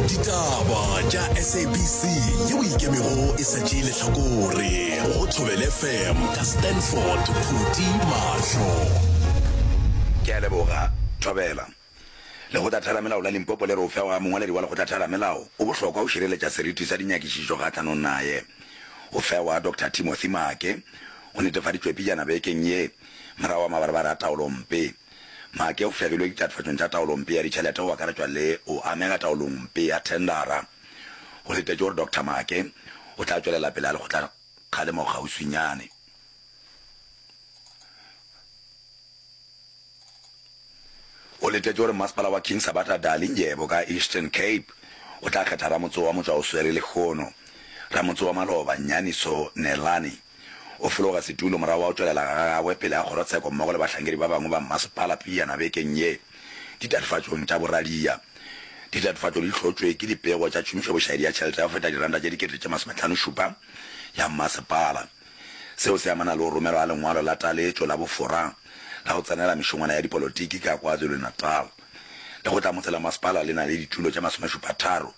ditaba tša sabc yeo ikemego e sa tšee lehlakore go thobele fm ka stanford phuti mahlo ke a leboga thobela lekgotlatheramelao la limpopo le re ofeo ga mongwaledi wa lekgotlatheramelao o bohlokwa go šireletša seriti sa dinyakišišo kgahlanong naye ofeo wa dr timothy maake go netefaditšwe pejana bekeng ye morago wa mabarabara a taolompe Maake o fegilwe ditatofatšong tša taolompe ya ditšhelete go akaretšwa le go amega taolongmpe ya thendara. Go letetšwe gore Doctor Maake o tla tšwelela pele ga lekgotlakgalemo kgauswinyane. Go letetšwe gore Mmasepala wa King Sabata Dali Ndyebo ka Eastern Cape o tla kgetha ramotse wa motšwaoswere lehono, ramotse wa maloba Nyaniso Neelane. O fologa setulo morago ga go tšwelela ga gagwe pele ga kgorotsheko mmogo le bahlankedi ba bangwe ba mmasepala pejana bekeng ye ditatofatšong tša boradia. Ditatofatšo di hlotšwe ke dipego tša tšhomišobošaedi ya tšhelete ya go feta diranta tše dikete tše masometlhanošupa ya mmasepala. Seo se amana le go romelwa ga lengwalo la taletšo la bofora la go tsenela mešongwana ya dipolotiki ka KwaZulu-Natal. Lekgotlamotse la masepala le na le ditulo tše masomešupatharo.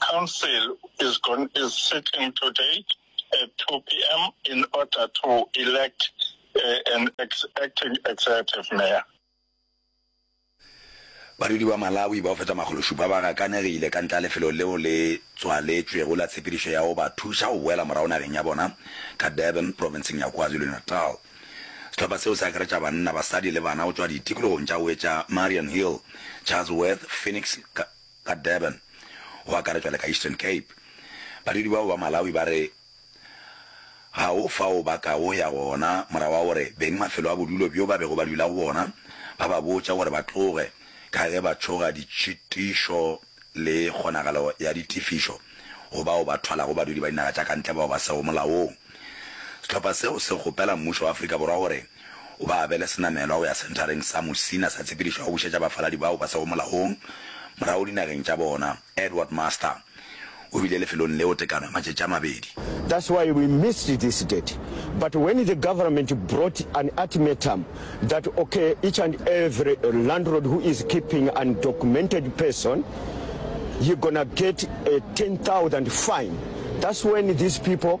Council is gon is sitting today at two PM in order to elect uh, an ex acting executive mayor. Badudi ba Malawi bao feta makgolo šupa ba gakanegile ka ntle lefelo leo le tswaletšwego la tshepedišo ya go ba thuša go boela morago nageng ya bona ka Durban, provinseng ya KwaZulu-Natal. Sehlopha seo se akaretša banna, basadi le bana go tšwa ditikologong tša Wetša, Marian Hill, Chatsworth, Phoenix, ka Durban, go akaretšwa le ka Eastern Cape. Badudi bao ba Malawi ba re ga go fao ba ka go ya gona morago ga gore beng mafelo a bodulo bjo ba bego ba dula go bona ba ba botša gore ba tloge ka ge ba tšhoga ditšhitišo le kgonagalo ya ditefišo go bao ba thwalago badudi ba dinaga tša kantle bao ba sego molaong. Sehlopha seo se kgopela mmušo wa Afrika Borwa gore O ba abele senamelwa go ya Senthareng sa Musina sa Tshepedišo ya go Bušetša Bafaladi bao ba sego Molaong morago dinageng tša bona. Edward Master o bile lefelong leo tekano ya matšatši a mabedi. That's why we missed this date but when the government brought an ultimatum that ok each and every landlord who is keeping an documented person you gonna get a ten thousand fine that's when these people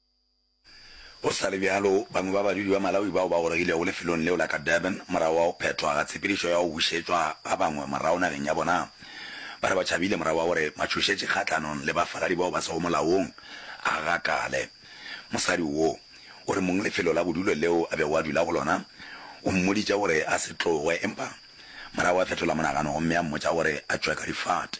Go sa le bjalo, bangwe ba badudi ba Malawi bao ba goregilego lefelong leo la ka Durban morago ga go phethwa ga tshepedišo ya go bušetšwa ba bangwe morago nageng ya bona ba re ba tšhabile morago ga gore matšhošetši kgahlanong le bafaladi bao ba sego molaong a gakale. Mosadi wo o re mong lefelo la bodulo leo a bego a dula go lona o mmoditše gore a se tloge empa morago a fetola monagano gomme a mmotša gore a tšwe ka difate.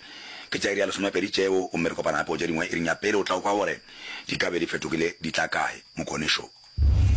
Ke tša iri ya lesomepedi tšeo gomme re kopana gape go tše dingwe iring ya pele. O tla o kwa gore di ka be di fetogile di tla kae, Mokonešu.